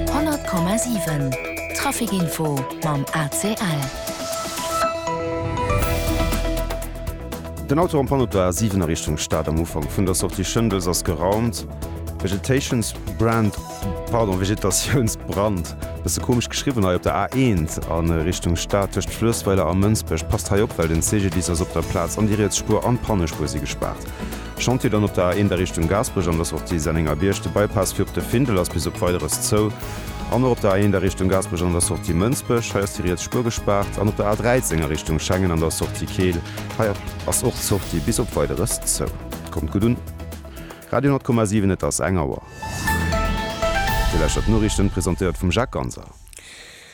100,7 Trafic Info mam ACL. Den Auto am Panneau der A7 a Richtung Stad am Ufank vun der Sortie Schëndels ass geraumt. Vegetatiounsbrand, pardon, Vegetatiounsbrand, bësse komesch geschriwwen hei, op der A1 a Richtung Stad tëscht Fluessweiler a Mënsbech. Passt hei op, well den CGDIS ass op der Plaz an déi riets Spuer an d'Pannespuer si gespaart. Chantier dann op der A1 a Richtung Gaasperech an der Sortie Sennengerbierg. De Bypass fir op de Findel ass bis op Weideres zou. An och op der A1 a Richtung Gaasperech an der Sortie Mënsbech. Hei ass déi riets Spuer gespaart. An op der A13 a Richtung Schengen an der Sortie Keel. Hei ass och d'Sortie bis op Weideres zou. Kommt gutt un! Radio 10,7 Et ass eng Auer. Dir lauschtert d'Noriichten, presentéiert vum Jacques Ganser.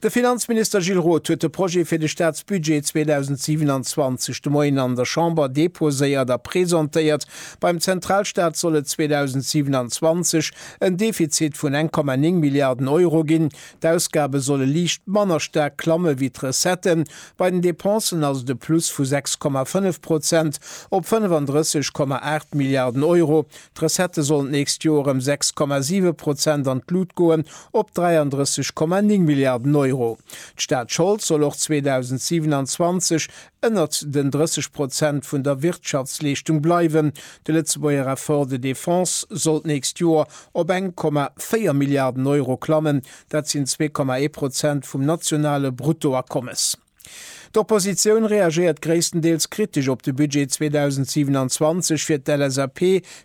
De Finanzminister Gilles Roth huet de Projet fir de Staatsbudget 2027 de Moien an der Chamber deposéiert a presentéiert. Beim Zentralstaat soll et 2027 en Defizit vun 1,9 Milliarden Euro ginn. D'Ausgabe solle liicht manner staark klamme wéi d'Recetten. Bei den Depensen ass et e Plus vu 6,5 Prozent op 35,8 Milliarden Euro. D'Recettë sollen d'nächst Joer ëm 6,7 Prozent an d'Lut goen, op 33,9 Milliarden Euro. D'Staatschold soll och 2027 ënnert den 30 Prozent vun der Wirtschaftsleeschtung bleiwen. De Lëtzebuerger Effort de défense soll d'nächst Joer op 1,4 Milliarden Euro klammen, dat sinn 2,1 Prozent vum nationale Bruttoakommes. D'Oppositioun reagéiert gréisstendeels kritesch op de Budget 2027. Fir d'LSAP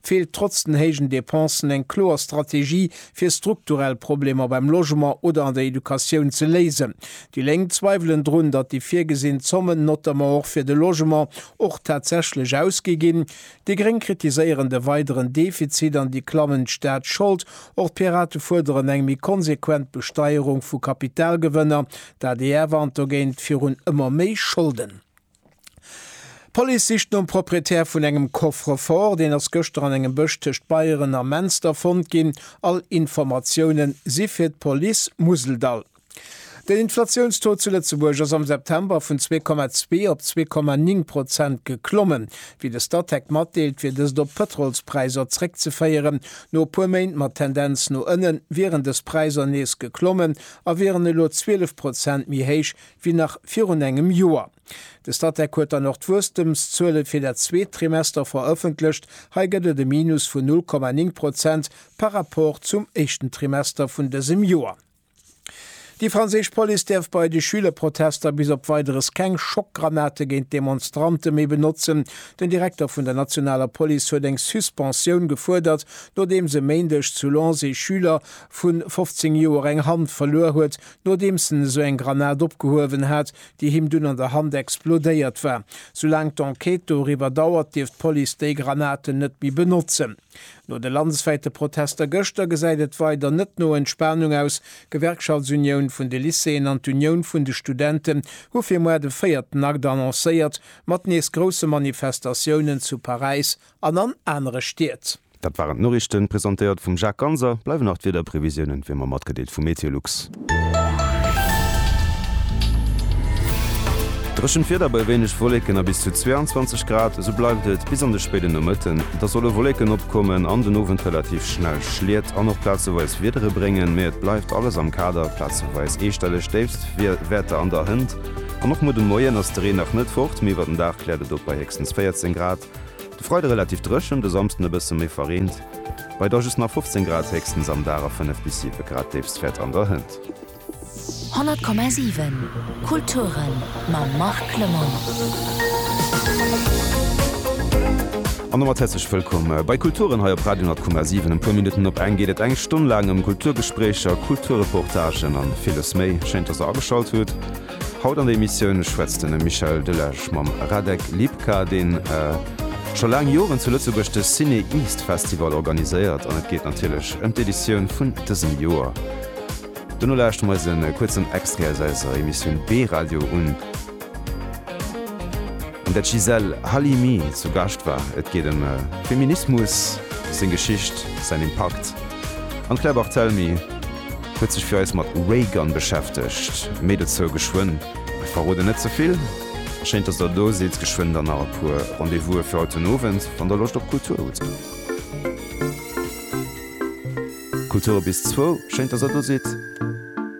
feelt trotz den héijen Depensen eng kloer Strategie, fir strukturell Problemer beim Logement oder an der Educatioun ze léisen. Déi Lénk zweiwelen drun, datt déi virgesinn Zommen, notamment och fir de Logement, och tatsächlech ausgi ginn. Déi Gréng kritiséieren de weideren Defizit an déi klammend Staatsschold. Och d'Pirate fuerderen eng méi konsequent Besteierung vu Kapitalgewënner, D'adr warnt dogéint virun ëmmer méi Scholden. D'Police sicht nom Proprietär vun engem Coffre-fort, deen ass gëschter an engem Bësch tëscht Beieren a Menster fonnt ginn. All Informatiounen si fir d'Police Museldall. Den Inflatiounstaux zu Lëtzebuerg ass am September vun zwee Komma zwee op zwee Komma ning Prozent geklommen. Wéi de Statec matdeelt, wier dëst op d'Pëtrolspräisser zréckzeféieren. No e puer Méint mat Tendenz no ënnen wieren dës Präisser nees geklommen, a wieren elo 12 Prozent méi héich wéi nach virun engem Joer. De Statec huet dann och d'Wuesstemszuele fir dat zweet Trimester verëffentlecht. Hei gëtt et e Minus vun 0,9 Prozent par Rapport zum éischten Trimester vun dësem Joer. Déi franséisch Police däerf bei de Schülerprotester bis op Weideres keng Schockgranate géint d'Demonstrante méi benotzen. Den Direkter vun der nationaler Police huet eng Suspensioun gefuerdert, nodeems e Méindeg zu Lens ee Schüler vu 15 Joer eng Hand verluer huet, nodeems en esou eng Granat opgehuewen hat, déi him dunn an der Hand explodéiert war. Soulaang d'Enquête doriwwer dauert, dierf d'Police déi Granaten net méi benotzen. No de landeswäite Protester gëschter gesäit et weider net no Entspanung aus. D'Gewerkschaftsunioun vun de Lycéeën an d'Unioun vun de Studenten hu fir muer de véierten Akt annoncéiert, mat nees grousse Manifestatiounen zu Paräis An an anere Stied. Dat waren d'Noriichten, presentéiert vum Jacques Ganser. Bleiwen nach d'Wiederprevisiounen, wéi mer matgedeelt vu Meteolux. Dréchent Wieder bei wéineg Wolleken a bis zu 22 Grad. Esou bleift et bis an de spéiden Nomëtten. Da solle Wolleken opkommen an den Owend relativ schnell Schliet an och plazeweis Wiedere bréngen, mee et bleift alles am Kader. Plazeweis eestelleg Déifstwäerter an der Hënt an och muer de Moien ass de Reen nach net fort, mee iwwer den Dag kläert et op bei héchstens 14 Grad. De Freide relativ dréchen, de Samsden e bësse méi verreent, bei da just nach 15 Grad, héchstens am Dag a 5 bis 7 Grad, d'Déifst fäert an der Hënt. 100,7 Kulturen mam Marc Lemmel. An domat häerzlech wëllkomm bei Kulturen hei op Radio 10,7. Em puer Minutten op eng geet et eng Stonn laang ëm Kulturgespréicher, Kulturreportagen an villes méi. Schéin, dass der ageschalt hutt. Haut an der Emissioun schwätzt den Michel Delage mam Radek Lipka, deen scho laang Joren zu Lëtzebuerg de Ciné East Festival organiséiert an et geet natierlech ëm d'Editioun vun dësem Joer. Dono lauschte mer eis e kuerzen Extrait aus eiser Emissioun B-Radio un, an där d'Gisèle Halimi zu Gascht war. Et geet ëm Feminismus, seng Geschicht, säin Impakt an d'Claire Barthelmy huet sech fir eis mat Raygun beschäftegt. Méi dozou geschwënn. Mir verroden net ze vill. Schéin dass der do sidd. Geschwënn dann nach e puer Rendez-vouse fir haut den Owend, wann der Loscht op Kultur hutt. Kultur bis zwou. Schéin dass der do sidd.